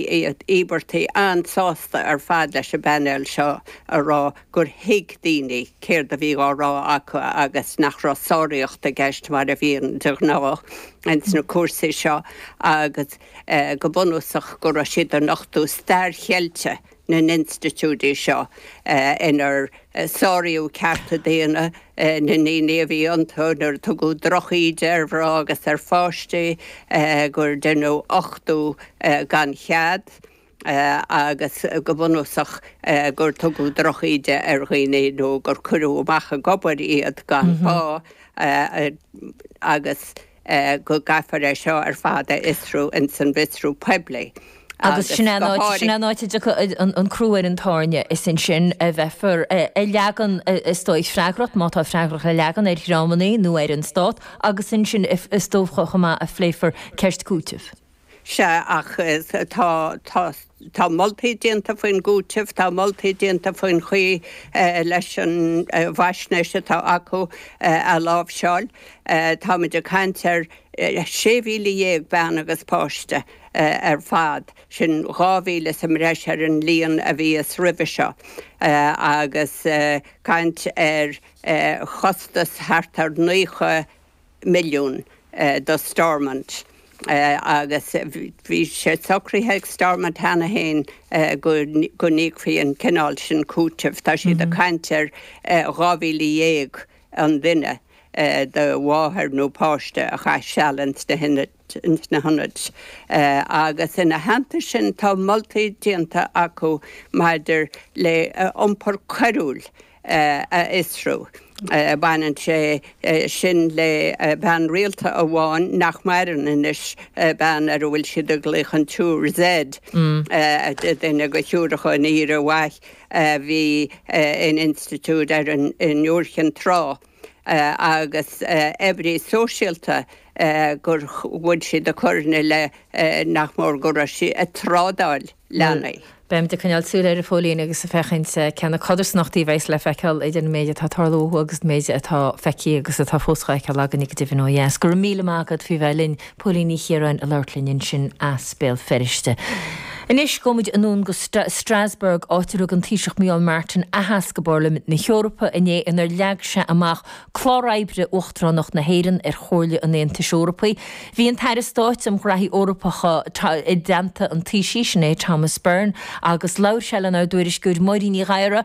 íobartaigh an-sásta ar fad leis an bpainéal seo a rá gur thuig daoine céard a bhí á rá acu agus nach raibh sáraíocht i gceist mar a bhíonn de ghnáth ins na cúrsaí seo agus go bunúsach go raibh siad ag nochtadh stair cheilte na n-institiúidí seo inar sáraíodh cearta daonna na ndaoine a bhí iontu, nuair a tugadh drochíde ar mhná agus ar pháistí, gur deineadh uchtú gan chead, agus go bunúsach gur tugadh drochíde ar dhaoine nó gur cuireadh amach ag obair iad gan phá agus. go gcaithfear é seo ar fad a fhiosrú ins an bhfiosrú poiblí Agus sin é an áit, sin é an áit a dtiocfaidh an crú ar an tairne, is ansin a bheifear ag leagan, is dóigh, freagracht, má tá freagracht le leagan, ar dhreamannaí nó ar an Stát, agus ansin is dócha chomh maith a phléifear ceist cúitimh. Sea, ach tá, tá, tá moltaí déanta faoin gcúiteamh, tá moltaí déanta faoin chaoi leis an bhfaisnéis atá acu a láimhseáil. Táimid ag caint ar 16,000 bean agus páiste ar fad, sin 2,000 sa mbreis ar an líon a bhí roimhe seo, agus caint ar chostas thart ar naocha, milliún do Stormont agus bhí sé socraithe ag Stormont cheana féin go n-íocfaí an cineál sin cúitimh. Tá siad ag caint ar 12,000 an duine de mháthair nó páiste a chaith seal ins na hionaid. na hionaid. Agus ina theannta sin tá moltaí déanta acu maidir le iompar coiriúil a fhiosrú. Baineann sé sin le bean rialta amháin nach maireann anois, bean ar a bhfuil siad ag glaoch an tSiúr Z, duine de Shiúracha an Aoire Mhaith a bhí in institiúid ar Iúr Chinn Trá. agus oibrí sóisialta gur bhain a coireanna le nach mór go raibh sí ag trádáil leanaí. Beimid ag coinneáil súil air a Phóilín agus ag feiceáil cé na codarsnachtaí a bheas le feiceáil idir an méid atá ag tarlú ó thuaidh agus an méid atá feicthe agus atá fós dhá fheiceáil againn go deimhin ó dheas. Go raibh míle maith agat faoi bheith linn. Póilín Ní Chiaráin a labhairt linn ansin as Béal Feirste. Anois, gabhaimid anonn go Strasbourg, áit ar thug an Taoiseach Micheál Martin aitheasc i bPairlimint na hEorpa inné inar leag sé amach clár oibre Uachtaránacht na hÉireann ar Chomhairle an Aontais Eorpaigh. Bhí an tAire Stáit um Ghnóthaí Eorpacha i dteannta an Taoisigh, sin é Thomas Byrne, agus labhair sé lenár dtuairisceoir Máirín Ní Ghadhra.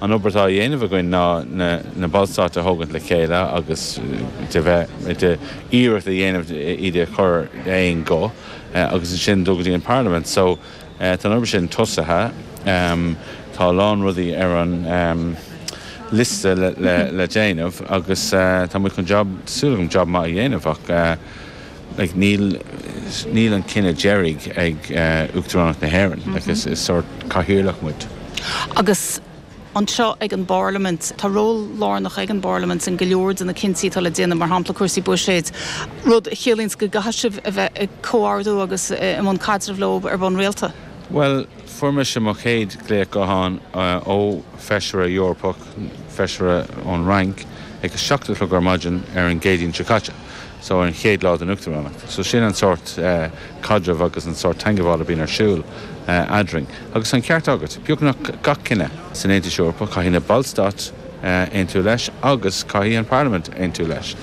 An obair atá á dhéanamh againn ná na Ballstáit a thógaint le chéile agus de bheith de iarracht a dhéanamh iad a chur d'aon ghuth agus ansin dul go dtí an Pharlaimint. So tá an obair sin tosaithe. Tá a lán rudaí ar an liosta le déanamh agus tá muid chun jab, tá súil agam, jab maith a dhéanamh ach. like níl, níl an cinneadh deiridh ag Uachtaránacht na hÉireann, like is, is sórt cathaoirleach muid. Agus anseo ag an bParlaimint, tá ról lárnach ag an bParlaimint in go leor de na cinntí atá le déanamh, mar shampla cúrsaí buiséid, rud a chiallaíonns go gcaithfidh sibh a bheith ag comhordú agus i mbun caidrimh leo ar bhonn rialta. Bhuel, fuair mise mo chéad glaoch gutháin ó Feisire Eorpach, Feisire ón Fhrainc, ag a seacht a chlog ar maidin ar an gCéadaoin seo caite. so an chéad lá den Uachtaránacht. So sin an sórt caidreamh agus an sórt teagmháil a bíonn ar siúl eadrainn. Agus tá an ceart agat, beagnach gach cinneadh san Aontas Eorpach, caithfidh na ballstáit aontú leis agus caithfidh an parlaimint aontú leis.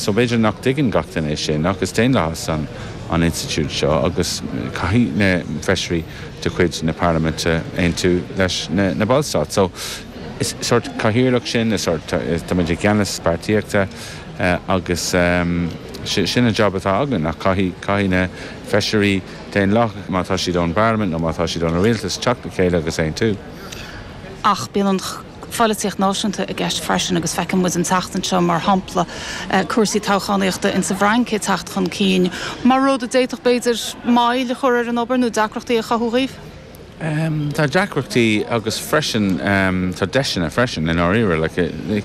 So b'fhéidir nach dtuigeann gach duine é sin ach is daonlathas an institiúid seo agus caithfidh na feisirí de chuid na parlaiminte aontú leis na ballstáit. So is sórt cathaoirleach sinn, is sórt, tá muid i gceannas páirtíochta. Eh agus ehm, sin an jab atá againn ach caithfidh, caithfidh na feisirí daonlathach, má tá siad ón bparlaimint nó má tá siad ón rialtas, teacht le chéile agus aontú. Ach bíonn an pholaitíocht náisiúnta i gceist freisin agus feiceann muid an tseachtain seo, mar shampla, eh cúrsaí toghchánaíochta in sa bhFrainc ag teacht chun cinn mar rud a d'fhéadfadh, b'fhéidir, moill a chur ar an obair nó deacrachtaí a chothú dhaoibh? Ehm, tá deacrachtaí agus freisin ehm tá deiseanna freisin i ndáiríre, like eh ní, ní.